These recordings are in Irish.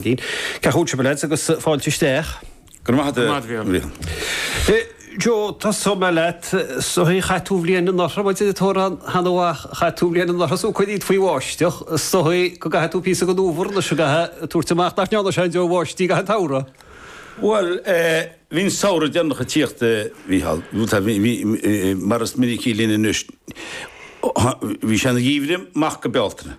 Cén chaoi a bhfuil sibh a lads agus fáilte isteach. Go raibh maith a't, a Bhrian. Joe, tosóidh mé leat. Chaith tú an bhliain anuraidh, muid ag toradh cheana uaidh, chaith tú an bhliain anuraidh, so cur dhíot faoi bháisteach, is dóigh go gcaithfidh tú píosa den fhómhar anois a bheith ag tabhairt amach, nach ndearna sé aon deoir bháistí i gcaitheamh an tsamhraidh? Bhuel, bhí an samhradh deireanach ag tíocht, a Mhícheáil, mar is minicí linn anois. Bhí sé ina gheimhreadh maith go Bealtaine.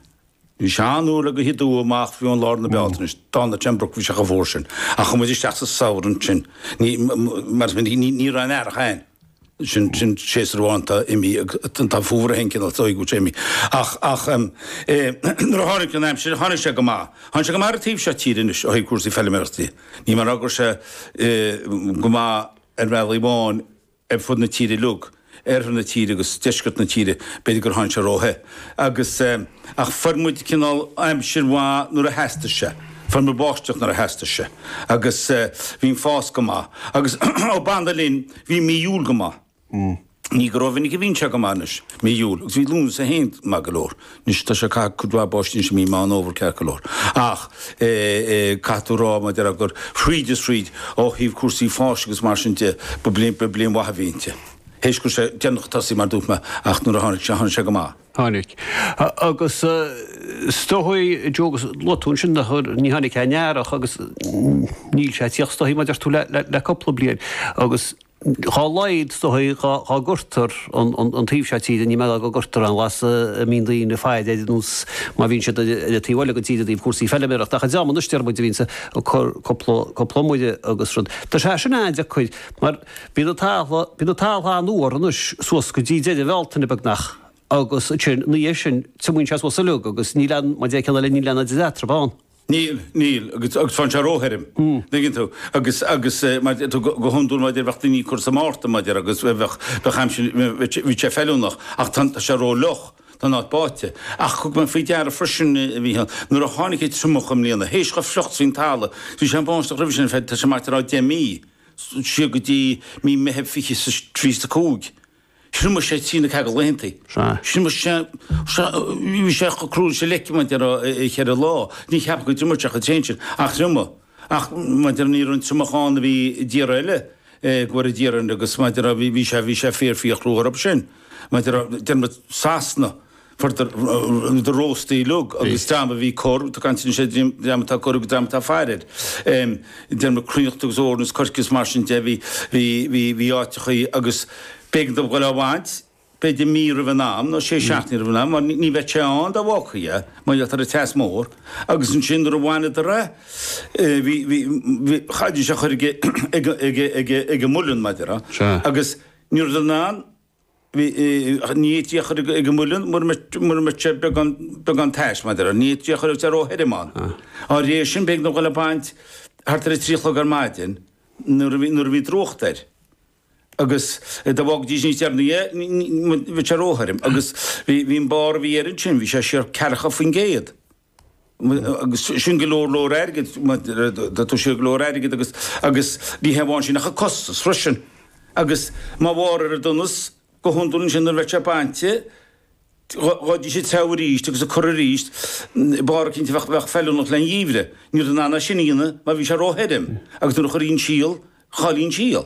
Bhí sé an-olc go dtí amach faoi bhun lár na Bealtaine, tháinig roinnt breacbhiseach an uair sin, ach chuaigh muid isteach sa Samhradh ansin. Ní, mar is minic, ní raibh aon Earrach ann. Sin, sin séasúr amháin atá imithe, tá an Fómhar é féin cineál agus Oighear sé imithe. Ach, ach em, eh, nuair a tháinig an aimsir, tháinig sé go maith. Tháinig sé go maith ar an taobh seo tíre anois, ó thaobh cúrsaí feilméarachta dhi. Níl mé ag rá go raibh sé, eh, go maith ar bhealach amháin, ar fud na tíre uilig, oirthear na tíre agus deisceart na tíre, b'fhéidir gur tháinig sé ró-the agus eh ach fuair muid cineál aimsir mhaith nuair a theastaigh sé, fuair muid báisteach nuair a theastaigh sé agus eh bhí an fás go maith agus ó b'annamh linn bhí mí Iúil go maith, ní go rómhinic a bhíonn sé go maith anois, mí Iúil agus bhí Lúnasa féin maith go leor. Anois tá sé ag caitheamh cuid mhaith báistí anois i mí Meán Fhómhair ceart go leor. Ach caithfidh tú rá mar déarfá gur thríd is thríd ó thaobh cúrsaí fáis agus mar sin de ba bliain mhaith a bhí inti. Théis go raibh sé deireanach ag tosaí mar dúirt mé ach nuair a tháinig sé tháinig sé go maith. Tháinig. Agus is dóichí Joe agus luaigh tú ansin nach ní tháinig aon Earrach agus níl sé ag tíocht is dóichí mar a deir tú le cúpla bliain agus. Dhá laghad is dóigh dhá gcuirtear an taobh seo tíre, níl mé ag rá go gcuirtear aon ghlas a mbíonn daoine ag faire air nós mar a bhíonn siad ar an taobh eile den tír i dtaobh cúrsaí feiliméarachta. Ach an dream ar nós Diarmaid a bhíonns ag cur cúpla iomaire agus rud. Tá sé sin an-deacair mar bíonn an talamh, bíonn an talamh an-fhuar anois suas go dtí deireadh Bhealtaine beagnach agus ansin ina dhiaidh sin triomaíonn sé suas uilig agus níl aon, mar a deir an ceann eile, níl aon idir eatarthu ann. Níl, níl, agus, agus faigheann sé róthirim, an dtuigeann tú, agus, agus eh, mar a deir tú, go, go hiondúil mar déarfá bheadh daoine ag cur sa Márta mar déarfá agus bheadh, bheadh, bheadh aimsir, bheadh sé, bheadh sé feiliúnach ach tá, tá sé rófhliuch, tá an áit báite. Ach thug mé faoi deara freisin, a Mhícheáil, nuair a tháinig an triomach i mbliana, théis chomh fliuch is a bhí an talamh, bhí sé ag báisteach roimhe sin, tá sé mar déarfá le deich mí, siar go dtí mí Meithimh fiche 's a trí 's a cúig. Thriomaigh sé trí nó ceathair de laethantaí. Sea. Thriomaigh sé, sea, bhí sé chomh cruaidh leis an leic mar déarfá i gceithre lá. Ní cheapfá go dtriomódh sé chomh tréan sin, ach thriomaigh. Ach mar déarfá ní raibh an triomach ann a bhí i dtíortha eile, go bhfoire Dia orainn, agus mar déarfá bhí sé, bhí sé fíor fíor chruaidh orthub sin. Mar déarfá deir muid Sasana. for the the rósta uilig agus dream a bhí ag cur tá mé ag caint anois ar dream atá ag cur agus dream atá faire air. Déanamh cruithneacht agus eorna is coirce is mar sin de. Bhí bhí bhí bhí áiteachaí agus b'éigean dóibh dul á bhaint b'fhéidir mí roimh an am nó sé seachtaine roimh an am mar ní bheadh sé ann dá bhfágfaí é mar gheall ar an teas mór agus ansin nuair a bhaineadar é bhí bhí bhí chaithfidís é a chur ag ag ag ag ag an muileann mar a déarfá agus ní raibh an Ní fhéadfaí a chur ag an muileann mura mbeadh sé beagán tais, mar a déarfá. Ní fhéadfaí a chur is é ró-thirim ann. Dá réir sin, b'éigean dóibh dhul ag baint thart ar a trí a chlog ar maidin nuair a bhí drúcht air. Agus dá bhfágfaidís níos deireanaí é, bheadh sé ró-thirim. Agus bhí an barr a bhí air ansin, bhí sé siar ceathracha faoin gcéad. agus sin go leor leor airgid, tá sé go leor airgid agus agus ní hé amháin sin ach an costas freisin agus mar bharr ar an donas go hiondúil ansin nuair a bheadh sé bainte ghabhfaidís ag treabhadh arís agus ag cur arís barr eicínt a bheadh bheadh feiliúnach le haghaidh an gheimhridh. Ní rabhadar in ann é sin a dhéanamh mar bhí sé ró-thirim agus nuair a chuirfí an síol, chaillfí an síol.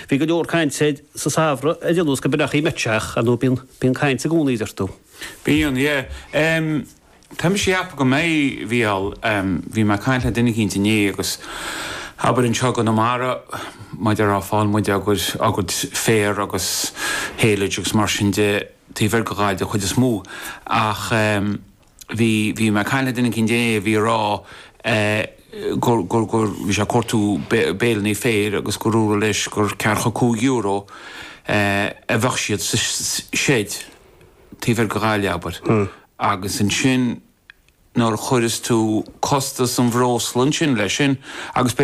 Bhí go leor cainte sa Samhradh ar Fhilús go mbeadh í meitseach, ar ndóigh bíonn caint i gcónaí a deir tú. Bíonn, yeah. Em, tá mise a cheapadh go mbeidh, bhí al, em, bhí mé a' caint le duine eicínt inné agus abair anseo i gConamara mar a déarfá faigheann muide ár gcuid, ár gcuid féir agus haylage agus mar sin de, taobh thoir de Ghaillimh den chuid is mó ach, em, bhí, bhí mé ag caint le duine eicínt inné a bhí ag rá eh gur, gur, gur, bhí sé ag cuartú baleannaí féir agus gur dúradh leis gur ceathracha cúig euro eh a bheadh siad sa seid taobh thoir de Ghaillimh abair agus ansin nuair a chuireas tú costas an bhreosla ansin leis sin agus b'fhéidir